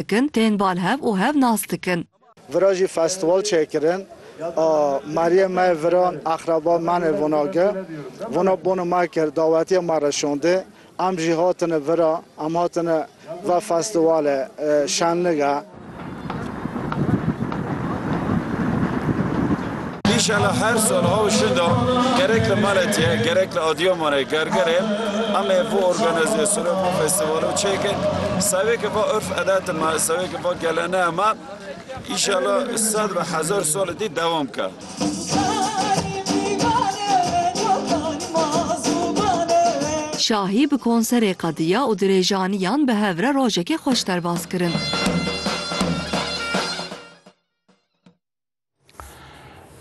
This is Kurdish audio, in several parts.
dikin, tên bal hev û hev nas dikin. Vira jî festîval çêkirin a Meriyê me yê viran eqreba me nê vona ge. Vona bonu me kir, dawetiyê me re şondê. Em jî hatine vira, em hatine ve festîwalê şenlige. Îşallah her sal a û şinda gerek li Maletiyê gerek li Adıyamanê Gergerê em ê vê organîzasyonê vê festîvalê çêkin. Sewêkê va urf edetê me, sewêkê va geleneya me îşallah sed be hezar salê dî dewam bike. Şahî bi konserê qediya û dirêjaniyan bi hev re rojekê xweş derbas kirin.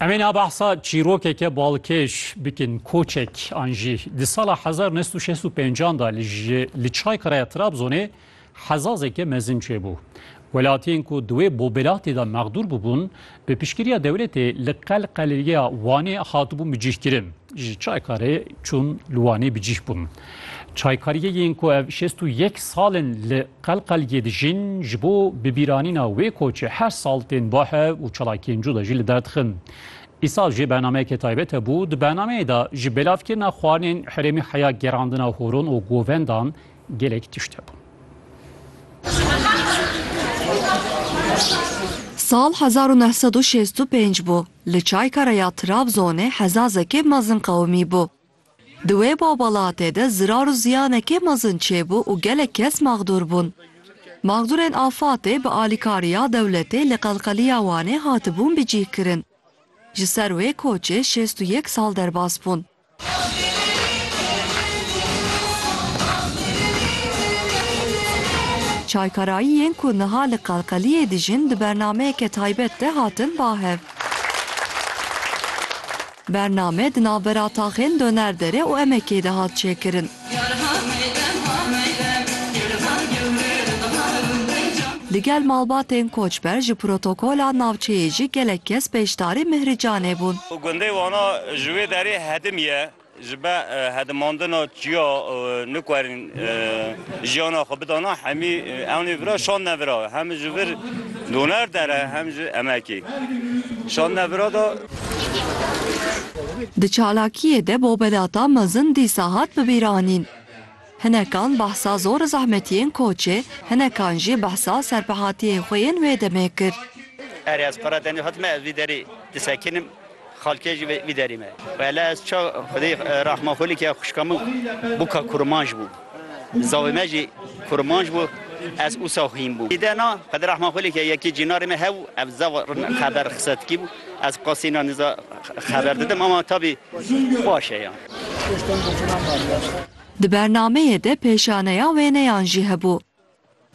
Em ê nabehsa çîrokeke balkêş bikin koçek an jî di sala hezar nest û şêst û pêncan da li ji li Çaykareya Trabzonê hezazeke mezin çêbû. Welatiyên ku di wê bobelatê de mexdûr bûbûn bi piştgiriya dewletê li Qelqelêya Wanê hatibûn bicîhkirin. Ji Çaykarê çûn li Wanê bicîh bûn. Çaykariyê yên ku ev şêst û yek sal in li Qelqelgê dijîn, ji bo bibîranîna wê koçê her sal tên Bohe û çalakiyên cuda jî li der dixin. Îsal jî bernameyeke taybet hebû, di bernameyê de ji belavkirina xwarinên herêmê heya gerandina horon û govendan gelek tişt hebûn. Sal hezar û neh sed û şêst û pênc bû, li Çaykara ya Trabzonê hezazekê mezin qewimî bû. Di wê babalatê de zirar û ziyanekê mezin çêbû û gelek kes maxdûr bûn. Maxdûrên afatê bi alîkariya dewletê li Qelqeliya Wanê hatibûn bicîhkirin. Ji ser wê koçê şêst û yek sal derbas bûn. Çaykarayiyên ku niha li Qelqeliyê dijîn di bernameyeke taybet de hatin bahev. Bername di navbera taxên Donerdere û Emekê de hat çêkirin. Digel malbatên koçber ji protokola navçeyê jî gelek kes beşdarî Mihricanê bûn. Gundê Wana ji wê derê hedim ye, ji ber hedimandina çiya nikwerîn. Jiyana xwe bidana hemî ewnê vira şandine vira hem ji vir doner dere hem ji emekê şandine vira da. Di çalakiyê de bobelata mezin dîsa hat bibîranîn. Hinekan behsa zor zehmetiyên koçê, hinekan jî behsa serpehatiyên xwe yên wê demê kir. Erê ez qere tenê hatime ez vî derê disekinim. Xalkê jî vê derê me. Wele ez ça xwedê rehma xwe like xwişka min bûka kurmanc bû. Zavê me jî kurmanc bû ez ûsa xwîn bûm. Dide na xwedê rehma xwe like yekê cînarê me hew ev zav xeber xisetkî bû. Ez qasî na nîza xeber didim ama tabî baş e yan. Di bernameyê de pêşaneya wêneyan jî hebû.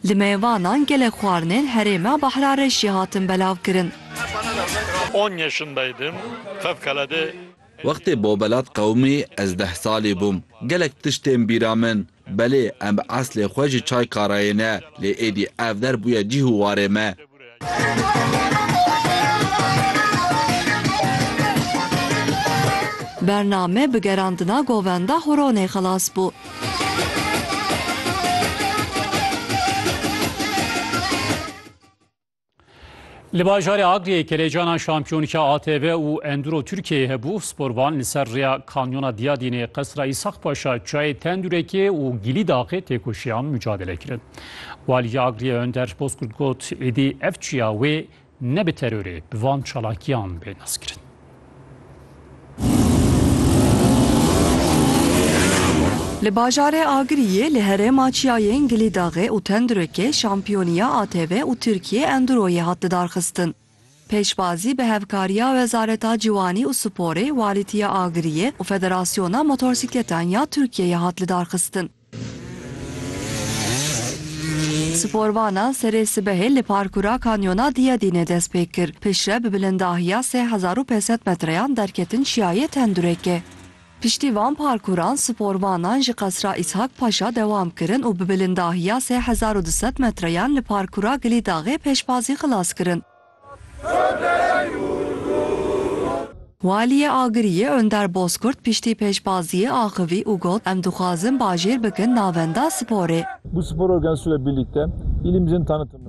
Li mêvanan gelek xwarinên herêma Bahrarêş jî hatin belavkirin. On yaşındaydım fevkalade. Wextê Bobelat qewimî ez deh salî bûm. Gelek tişt tên bîra min. Belê em bi eslê xwe ji Çaykarayê ne lê êdî ev der bûye cîh û warê me. Bername bi gerandina govenda Huronê xilas bû. Li bajarê Agriyê kelecanan şampiyonka ATV û Enduro Tirkiyeyê hebû, sporvan li ser rêya Kanyona Diyadînê, Qesra Îsaq Paşa, Çayê Tendurekê û Gilî Daxê têkoşiyan, mucadele kirin. Waliyê Agiriyê Önder Bozkurt got, Êdî ev çiya wê ne bi terorê bi van çalakiyan bê naskirin. Li bajarê Agiriyê li herêma çiyayên Gilîdaxê û Tendirekê şampiyoniya ATV û Tirkiye Enduroyê hat lidarxistin. Pêşbazî bi hevkariya Wezareta Ciwanî û Sporê, Walîtiya Agiriyê û Federasyona Motorsîkletan ya Tirkiyeyê hat lidarxistin. Sporvana serê sibehê li parkura Kanyona Diyadînê dest pê kir, piştre bi bilindahiya sê hezar û pênc sed metreyan derketin Çiyayê Tendurêkê. Piştî van parkuran sporvanan ji Qesra Îshak Paşa dewam kirin û bi bilindahiya sê hezar û du sed metreyan li parkura Gilîdaxê pêşbazî xilas kirin. Waliyê Agiriyê Önder Bozkurt piştî pêşbaziyê axivî û got, Em dixwazin bajêr bikin navenda sporê. Bu spor organizasyonu ile birlikte ilimizi tanıtımını.